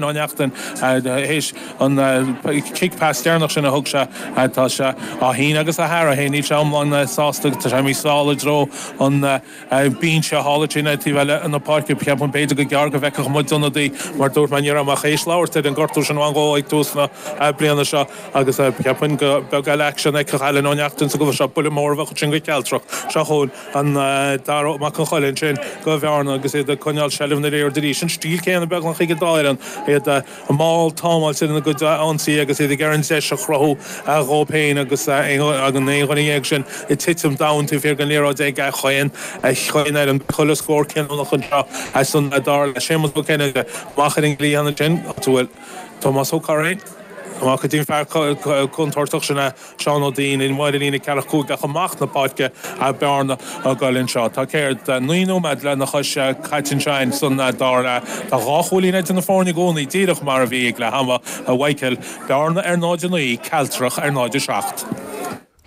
Ó Neachtain tar éis an chic pas deireanach sin a thug sé, tá sé á shíneadh agus á shearradh féin. Níl sé iomlán sásta. Tá sé ag imeacht sall i dtreo an bhinse thall ar an taobh eile na páirce. Cheapfainn b'fhéidir go gearr go bhfeicfeadh muid ionadaí mar dúirt mé ní raibh mé ach théis labhairt ar an ngortú sin a bhain dhó ag tús na bliana seo agus cheapfainn gur beag eile aicsean a fheicfeadh Alan Ó Neachtain sa gcluiche seo. Buille mór a bheadh ansin do Chealtrach seo chugainn. an dara Mac an Choill ansin do Bhearna agus iad ag coinneáil seilbh na liathróide arís. An stíl céanna beagnach ag an dá fhoireann, iad mall támáilte ina gcuid ionsaí agus iad ag iarraidh an deis a chruthú dhóibh féin agus an aon dhuine dhéag sin ag titim domhain taobh thiar den liathróid ag chaon fhoireann eile. Chuile scór cinniúnach anseo as an dá fhoireann le Séamus Ó Cinnéide amach ar an gcliathán ansin, áit a bhfuil Tomás Ó Curraoin amach go dtí an fear contúirteach sin a Seán Ó Duinn amuigh ar an líne ceathracha cúig ach amach na páirce atá Bearna ag goil anseo. Tá céard? naoi nóiméad lena chois caite anseo insa dara leath. Tá dhá chúilín idir na foirne i gcónaí, díreach mar a bhí ag leath ama. a Mhaidhcil, Bearna ar 0, 9, Cealtrach ar 0, 7.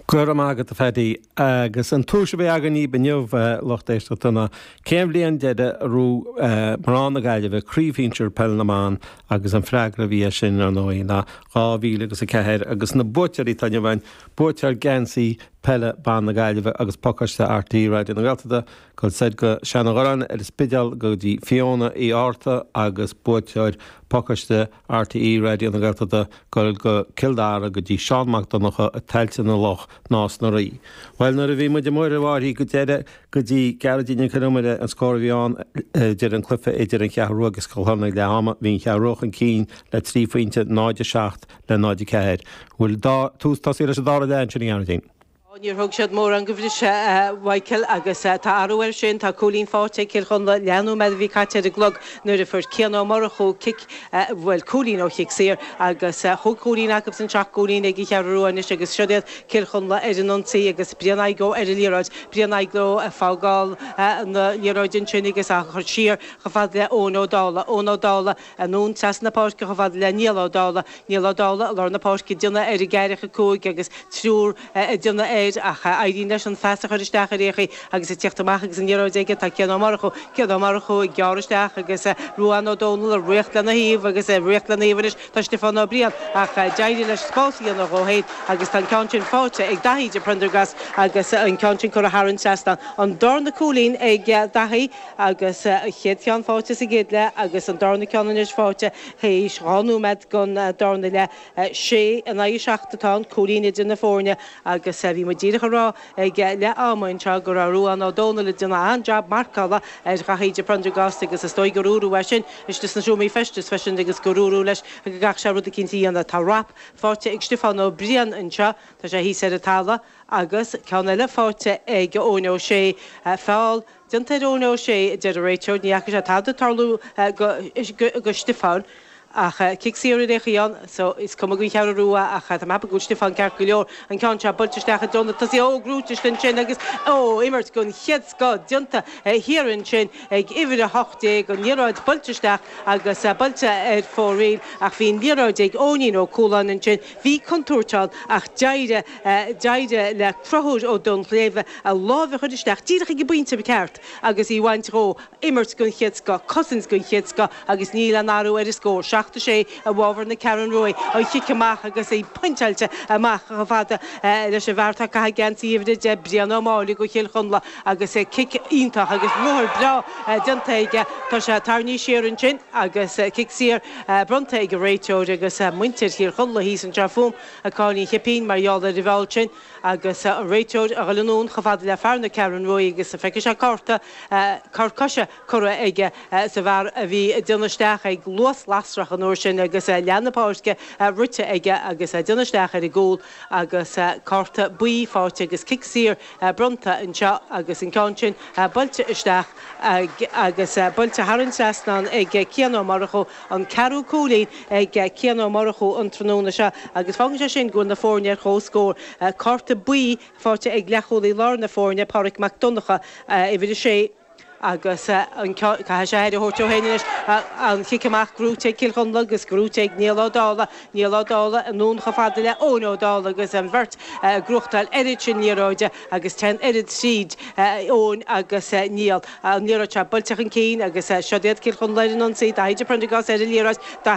Go raibh maith agat, a Phaddy. Agus an tomhais a bhí againn dhaoibh inniu, lucht éisteachta, ná cén bhliain deiridh ar bhuaigh mná na Gaillimhe craobh shinsir Peil na mBan agus an freagra a bhí air sin, ar ndóigh, ná dhá mhíle agus a ceathair. Agus na buaiteoirí atá inniu againn, buaiteoir geansaí peile ban na Gaillimhe agus pacáiste RTÉ Raidió na Gaeltachta, gabhfaidh siad go Seanadh Ghurráin ar an Spidéal go dtí Fiona Uí Fhátharta agus buaiteoir pacáiste RTÉ Raidió na Gaeltachta ag goil go Cill Dara go dtí Seán Mac Donnacha i Tailte na Loch, Nás na Rí. Bhuel nuair a bhí muid amuigh roimh áirí go deireadh go dtí Gearóidín Nic an Iomaire an scór a bhí ann idir an cluiche idir an Cheathrú agus Cill Chonla ag leath ama bhí an Cheathrú chun cinn le trí phointe 0 7 le 0 4. Bhfuil tús tosaithe leis an dara leath ansin a Ghearóidín. Ó, níor thug siad mórán de bhriseadh, a Mhaidhcil, agus tá athrú air sin. Tá cúilín faighte ag Cill Chonla leath nóiméad a bhí caite ar an gclog nuair a fuair Cian Ó Murchú cic, bhuel, cúilín ó chic saor, agus chúig chúilín acusan, seacht gcúilín ag an Cheathrú Rua anois agus siod iad, Cill Chonla ar an ionsaí agus Brian Igoe ar an liathróid, Brian Igoe ag fágáil na liathróide ansin agus á chur siar chomh fada le Eoin Ó Dálaigh, Eoin Ó Dálaigh, Anonn trasna na páirce chomh fada le Niall Ó Dálaigh. Niall Ó Dálaigh i lár na páirce, déanamh ar an gceathracha cúig agus triúr ag déanamh air ach éiríonn leis an phas a chur isteach ar aon chaoi agus ag tíocht amach agus an liathróid aige tá Cian Ó Murchú. Cian Ó Murchú ag gearradh isteach agus Ruadhán Ó Domhnaill ag ritheacht lena thaobh agus ag ritheacht lena thaobh anois tá Stiofán Ó Briain ach d'éirigh leis spás a dhéanamh dhó féin agus tá an ceann sin faighte ag Daithí de Priondargás agus an ceann sin curtha thar an trasnán. An darna cúilín ag Daithí. agus an chéad cheann faighte sa gcéad leath agus an darna ceann anois faighte tar éis dhá nóiméad den darna leath. Sé in aghaidh a seacht atá an cúilín idir na foirne agus bhí muid díreach ag rá ag leath ama anseo go raibh Ruán Ó Dónaill ag déanamh an-jab marcála ar Dhaithí de Prendergast agus is dóigh gur dúradh é sin istigh sna seomraí feistis freisin agus gur dúradh leis go gcaithfidh sé rud eicínt a dhéanamh. Tá rap faighte ag Stiofán Ó Briain anseo, tá sé thíos ar an talamh, agus ceann eile faighte ag Eoin Ó Sé, feall déanta ar Eoin Ó Sé, a deir an réiteoir. Ní fhaca sé tada ag tarlú do Stiofán. Ach cic saor ar aon chaoi ann. So, is cuma don Cheathrú Rua ach tá mé ag ceapadh go bhfuil Stiofán ceart go leor. An ceann seo buailte isteach i dtreo na tosaithe ó gnóite thuas ansin agus, oh, imirt den chéad scoth déanta thiar ansin ag uimhir 18. An liathróid buailte isteach agus buailte ar fóraoil ach bhí an liathróid ag Eoinín Ó Cualáin ansin. Bhí contúirt ann ach d'éirigh. D'éirigh le Conchúr Ó Duinnshléibhe a láimh a chur isteach díreach ag an bpointe ceart agus í a bhaint dhó, imirt den chéad scoth, cosaint den chéad scoth agus níl aon athrú ar an scór, seacht is sé i bhfábhar na Ceathrún Ruaidh. An cic amach agus é pointeáilte amach chomh fada leis an bhfear atá ag caitheamh geansaí uimhir a deich, Brian Ó Máille do Chill Chonla agus cic iontach agus ruathar breá déanta aige. Tá sé tarraingthe siar ansin agus cic saor bronnta ag an réiteoir agus muintir Chill Chonla thíos anseo fúm. Ag cur an chipín mar gheall ar an bhfeall sin agus an réiteoir ag dhul anonn chomh fada le fear na Ceathrún Ruaidh agus feicfidh sé cárta, cor coise curtha aige sa bhfear a bhí ag déanamh isteach ag luas lasrach an uair sin agus leath na páirce rite aige agus déanamh isteach ar an gcúl agus cárta buí faighte agus cic saor bronnta anseo agus an ceann sin buailte isteach agus buailte thar an trasnán ag Cian Ó Murchú. an ceathrú cúilín ag Cian Ó Murchú an tráthnóna seo agus fágann sé sin go bhfuil na foirne ar comhscór. Cárta buí faighte ag leathchúlaí láir na foirne, Pádraig Mac Donnacha, uimhir a sé, agus caithfidh sé aire a thabhairt dó féin anois, an cic amach gnóite ag Cill Chonla agus gnóite ag Niall Ó Dálaigh, Niall Ó Dálaigh anonn chomh fada le Eoin Ó Dálaigh agus an bheirt ag gnóchtáil oiread sin liathróide agus téann an oiread tríd, Eoin agus Niall. An liathróid seo, buailte chun cinn, agus seo iad Cill Chonla ar an ionsaí, Dáithí de Prendergast ar an liathróid, Dáithí.